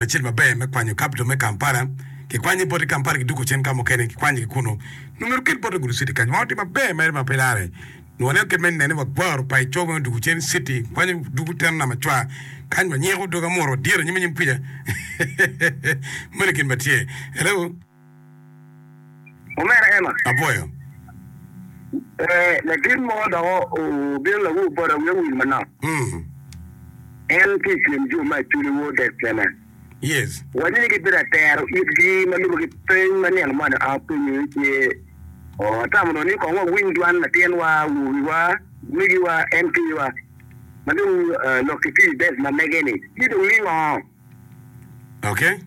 Lacen maber me kwanyo capital me Kampala kikwanyo bote Kampala kiduko cen ka mukene kikwanyo ki kunu nyo myero oket bote gudo city kany ma watye maber mere ma pe lare nyo waneno kit me nene wa gwaro pa ico me duko cen city kwanyo duko teno nama cwa kany wanyiko dogi amuto wadyere anyim anyim kwica meno gin matye hello. Omera Emma. Apwoyo. Ee, latin mo dok obino lawor bota, wiye owil manok. Mm. En tye i kin jo ma aculi wor dek kene. Yes. Wacci ni gibino atero itgi ma lube ki peny ma nino moni a penyo iye ce, Oo, atamo dong ni kong wawiny dwan latinwa, awobiwa, megiwa, en kiwa, ma dong lok ki tic dek ma mege-ni, ci dong ningo? Oke?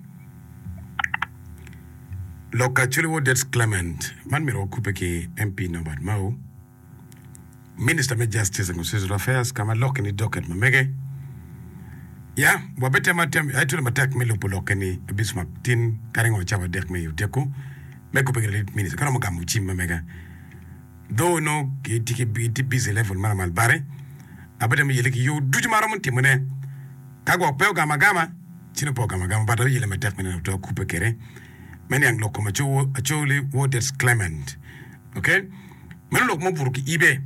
Lok Acholi Wodet Clement, man myero wakubbe ki MP Norbert Mao, Minista me Justice and Constitutional Affairs, ka ma lokke ni docket ma mege. Ya, wabitemo atem, aye tuli matek me lubo lokke ni abic ma tin ka ringo cawa adek me i odeko me kubbe ki latit minista, ka romo gamo cim ma mega. Dho onongo gitye busy level ma lamal bati, abitemo yele ki yoo ducu ma aromo timo ne. Ka gwok pe ogamo agama, ci nongo pe ogamo agama but ayele matek me neno oto akube kede me niang lok kom acowo acowo li woo that's Clement ok meno lok ma obuto ki ibe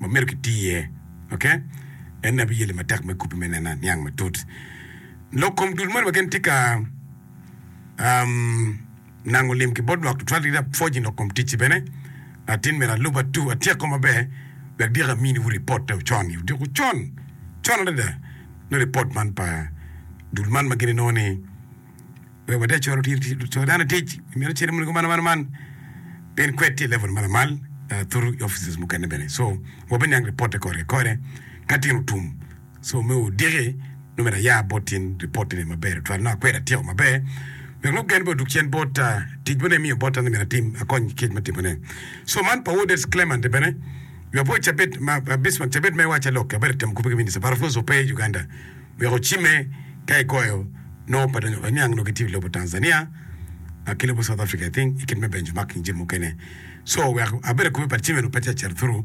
ma medo ki tii iye ok ene abi yele matek me kube me neno aniang matut lok kom dul moni wa gin tye ka um Nango lim ki bot lwak tutwal kit apwoc i lok kom ticci bene. Latin meri alub atu atyeko maber wek dyekki aminiwu ripot te ocon i odiko con con adada me ripot man pa dul man ma gin inongo ni wek wati acora co dano tic i mito cito monego man man man pien kwed tye i level ma lamal thuru i offices mukene bene so wabiniang ripot te kore kore ka tino tum Co me odiki nongo myero aya bot tyen ripot-tini maber tutwal nongo akwero atyeko maber wek lok gen bene odug cen bot tic ma nongo imiyo botta ni myero atim, akony ki kit me timone. Co man pa Woodets Clement bene myero apo cabit ma Bismark cabit ma iwacce lok abedo itemo kobbe ki Minista but of course ope i Uganda wek ocimme ka igoyo nongo pe donyo oniang nongo gitye i lobo Tanzania ki lobo South Africa I think i kit me benchmarking jami mukene so wek abedo kobbe but cimme nongo pe tye acito through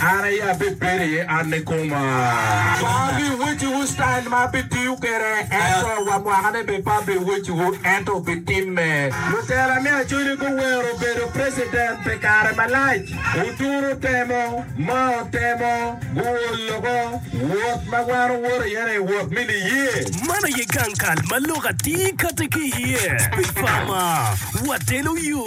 An aye abibedo iye, an nikoma. Wa abiwecciwu citail ma abitiyo kwede, ento wa mwakane bene pe abiwecciwu, ento wubitimme. Lutela me Acoli guwero bedo president pi kare malac. Oturu temo, Mao temo, guol loko. Wot ma wan wuwoto iye-ni, wot me niye. Man aye gang kal ma lok atir kati ki iye pi Pama. Watelo yo.